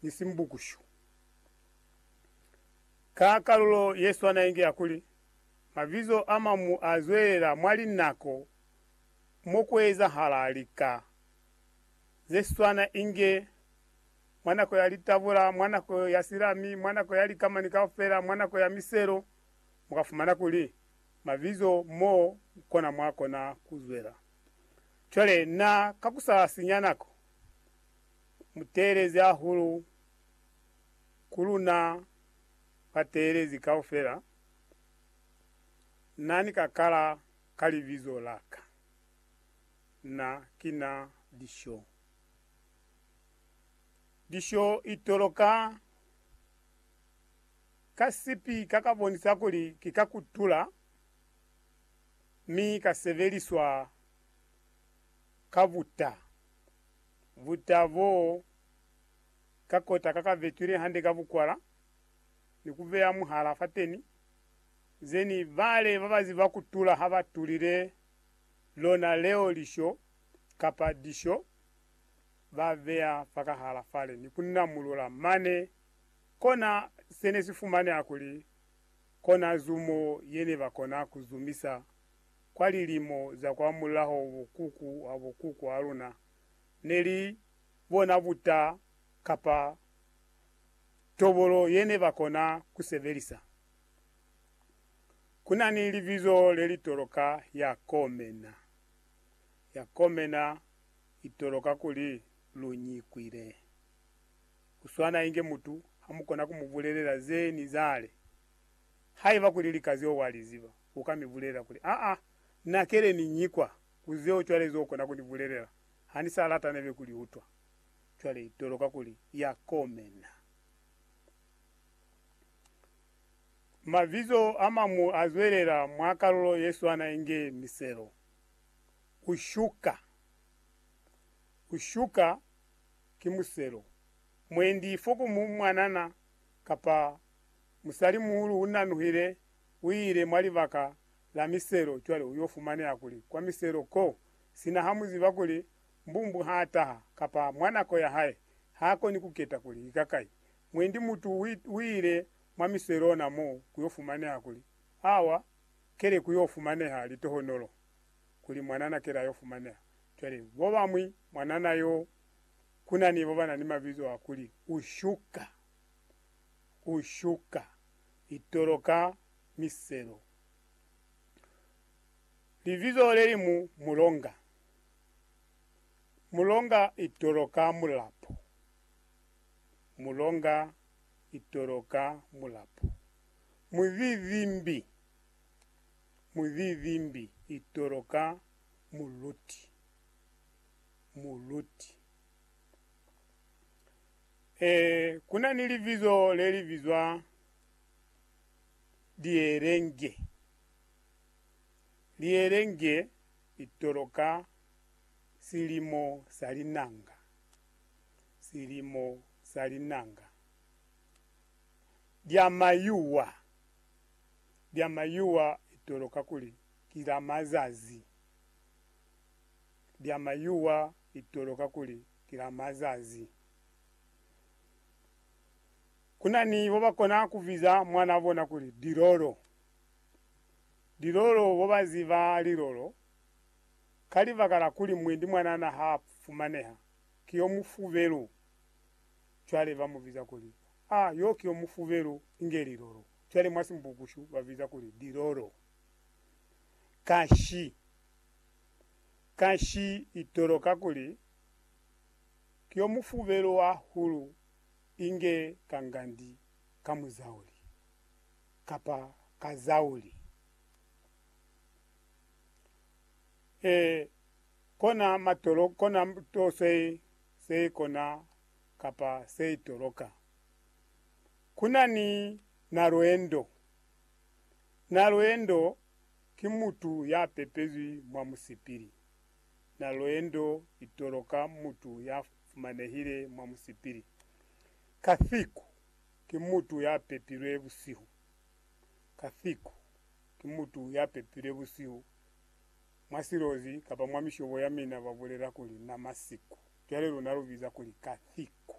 ni simbukushu. Ka kalulo ye swana inge ya kuli, mabizo a mamu a zwelela mwa linako mo ku ezahala lika ze swana inge mwa nako ya litabula, mwa nako ya silami, mwa nako ya likamani kaufela, mwa nako ya miselo, mu ka fumana kuli mabizo mo kona mwa kona ku zwela. Cwale na ka ku sa sinya nako, Mu teelezi hahulu ku luna bateelezi kaufela, Na ni ka kala ka Libizo la Ka. Na ki Na Lisho. Lisho i toloka ka sipi ka ka bonisa kuli ki ka kutula, mi ka sebeliswa ka buta. Buta bo ka kota ka ka vetwile hande ka bukwala ni ku beya muhala fateni, zeni bale ba ba ziba ku tula ha ba tulile lona leo lisho kapa disho ba beya fakahala fale ni ku namulula mane. Kona se ne si fumaneha kuli kona zumo ye ne ba kona ku zumisa. kwa lilimo za kwamulaho bukuku ha bukuku ha luna ne li bona buta kapa tobolo ye ne ba kona ku sebelisa. Ku na ni libizo le li toloka ya komena. Ya komena i toloka kuli lu nyikwile. Ku swana inge mutu ha mu kona ku mu bulelela ze ni zale haiba kuli lika zeo wa li ziba. Uka mi bulelela kuli, Aa, na kele ni nyi kwa, ku zeo cwale zo kona ku ni bulelela. Ha ni sa lata nebe ku li utwa. Cwale i toloka kuli ya komena. Mabizo a mañwi a zwelela mwa kalulo ye swana inge miselo. U shuka. U shuka ki muselo. Mwendi fo ku mu mwanana kapa musalimuhulu u nanuhile uile mwa libaka la miselo cwale uyo fumaneha kuli kwa miselo ko, sina ha muziba kuli mbumbu ha taha kapa mwa nako ya hae, ha koni kuketa kuli ika kai. Mwendi mutu uile mwa miselo ona mo kuyo fumaneha kuli awa kele kuyo fumaneha litohonolo kuli mwanana kele ayo fumaneha. Cwale bobamwi mwanana yo kunani bobana ni mabizo a kuli, Ushuka! Ushuka! litolo ka miselo. Libizo le li mu mulonga. Mulonga itolo ka mulapo. Mulonga itolo ka mulapo. Muzizimbi. Muzizimbi itolo ka muluti. Muluti. Ee, ku na ni libizo le li bizwa Lielenge. Lielenge li toloka silimo sa linanga, silimo sa linanga. Lya mayuwa, lya mayuwa li toloka kuli ki la mazazi, lya mayuwa li toloka kuli Kila mazazi ku na ni bo ba kona ku biza mwan'a bona kuli Dilolo. Dilolo bo ba ziba lilolo ka libaka la kuli mwendi mwanana ha a fumaneha, ki yo mufubelu. Cwale ba mu biza kuli, A, yo ki yo mufubelu, inge lilolo. Cwale mwa Simbukushu ba biza kuli Dilolo. Kashi. Kanshi itoloka kuli, Ki yo mufubelo wa hulu inge ka ngandi ka muzauli, kapa ka zauli. E, kona matolo, kona to se, se kona kapa se itoloka. Kuna ni na lwendo, na lwendo Ki mutu ya pepezwi mwa musipili. Na lweendo itolo ka mutu ya fumanehile mwa musipili. Kathiku, ki mutu ya pepilwe busihu. Kathiku, ki mutu ya pepilwe busihu. Mwa silozi kapa mwa mishobo ya mina ba bulela kuli na masiku. Cwale luna lu biza kuli kathiku.